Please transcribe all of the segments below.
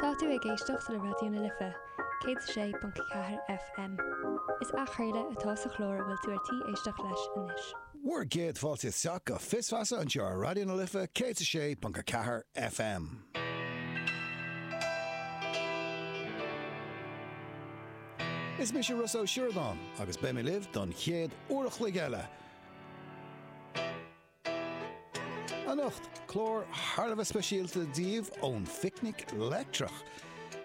Tá tú ag éisteacht le Raidió na Life, 106.4 FM. Is athchraoladh atá sa chlár a bhfuil tú ar tí éisteacht leis anois. Bhur gcéad fáilte isteach go Fios Feasa anseo ar Raidió na Life 106.4 FM. Is mise Rossa Ó Sioradáin agus beidh mé libh don chéad uair a chloig eile. Anocht, clár thar a bheith speisialta daoibh ón Phicnic Leictreach.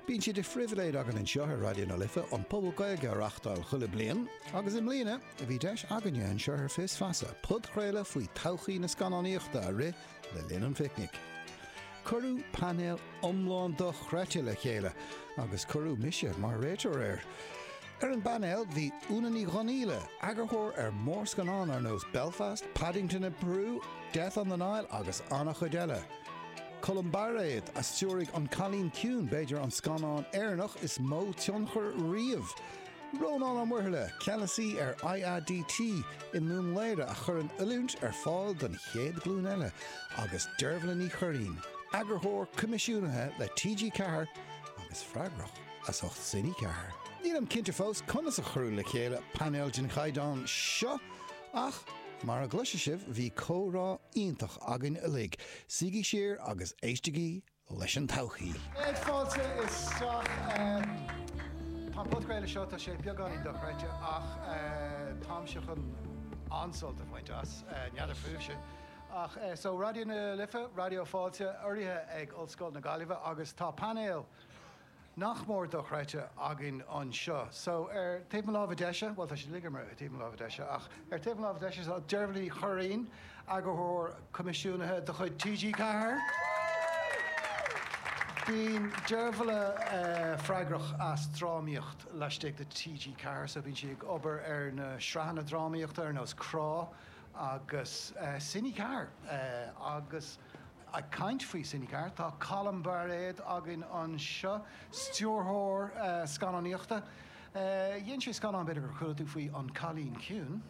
Bíonn sé de phribhléid againn anseo ar Raidió na Life an Puball Gaeilge a reachtáil chuile bliain, agus i mbliana bhí deis againne anseo ar Fios Feasa podchraoladh faoi todhchaí na scannánaíochta a rith le linn an Phicnic. Cuireadh painéal iomlán dochreidte le chéile agus cuireadh mise mar réiteoir air. Ar an bpainéal bhí Úna Ní Dhonghaíle, eagarthóir ar mhórscannán ar nós Belfast, Paddington in Peru, Death on the Nile agus an-chuid eile. Colm Bairéad a stiúraigh An Cailín Ciúin, b'fhéidir an scannán Éireannach is mó tionchar riamh. Rónán Ó Muirthile, Ceannasaí ar IADT i nDún Laoghaire a chuireann oiliúint ar fáil don chéad ghlúin eile agus Deirbhile Ní Churraighín, Eagarthóir Coimisiúnaithe le TG4 agus freagrach as ucht Cine4. Nílim cinnte fós conas a cuireadh le chéile painéal den chaighdeán seo ach mar a gcloisfidh sibh bhí comhrá iontach againn uilig, suígí siar agus éistigí leis an todhchaí. Céad fáilte isteach. Tá an podchraoladh seo, tá sé beagáinín dochreidte ach táimse chun an-sult a bhaint as, n'fheadar fúibhse. Ach so Raidió na Life, Raidió Fáilte, urraithe ag Ollscoil na Gaillimhe agus tá painéal nach mór dochreidte againn anseo. So, ar taobh mo láimhe deise, bhuel, tá siad uilig ar taobh mo láimhe deise, ach ar taobh mo láimhe deise tá Deirbhile Ní Churraighín, Eagarthóir Coimisiúnaithe de chuid TG4. Bíonn Deirbhile freagrach as drámaíocht laistigh de TG4, so bíonn sí ag obair ar na sraitheanna drámaíochta ar nós Crá agus Cine4 agus. Ag caint faoi Cine4, tá Colm Bairéad againn anseo, stiúrthóir scannánaíochta. Dhein sé scannán, b'fhéidir gur chuala tú faoi, An Cailín Ciúin.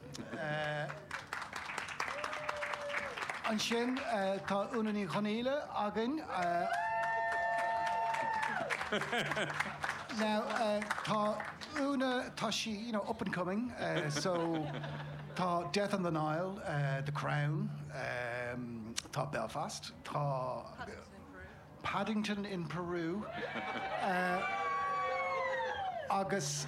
Ansin tá Úna Ní Dhonghaíle againn. Now tá Úna, tá sí, you know, up and coming, so. Tá Death on the Nile, The Crown, tá Belfast, tá Paddington in Peru agus.